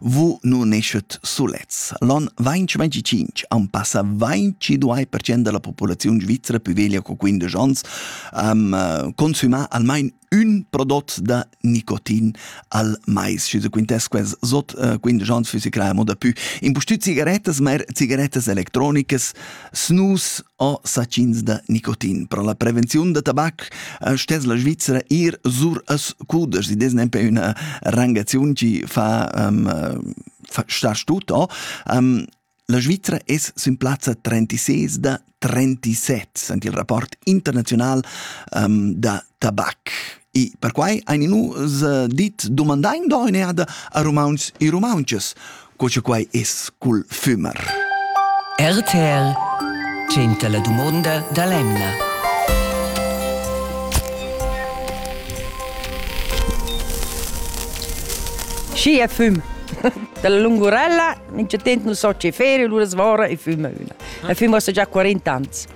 Vu nu neschet sulets. L'on 2025 am passa 22% da la populaziun svizra pü veglia co 15 ans am uh, consüma almain ün prodot da nicotin al mais. Schi se quintess quels sot uh, 15 ans füssi crea moda pü. Impustüt cigarettas, ma er cigarettas electronicas Snus o sachins da nicotin. Pro la prevenziun da tabac eh, stess la Svizzera ir sur as cuders. Id es nempe üna rangaziun chi fa um, star stut. Oh. Um, la Svizzera es sün plazza 36 da 37, sent il rapport internazional um, da tabac. E perquai ein nus eh, dit domandain doineada a Romauns e Romaunches, co che quai es cul fümer. RTL 100 la dumonda da l'emna. Schi è fum. Dalla lungurella, in certo tempo non so che ferie, allora svora e fuma una. E fuma già 40 anni.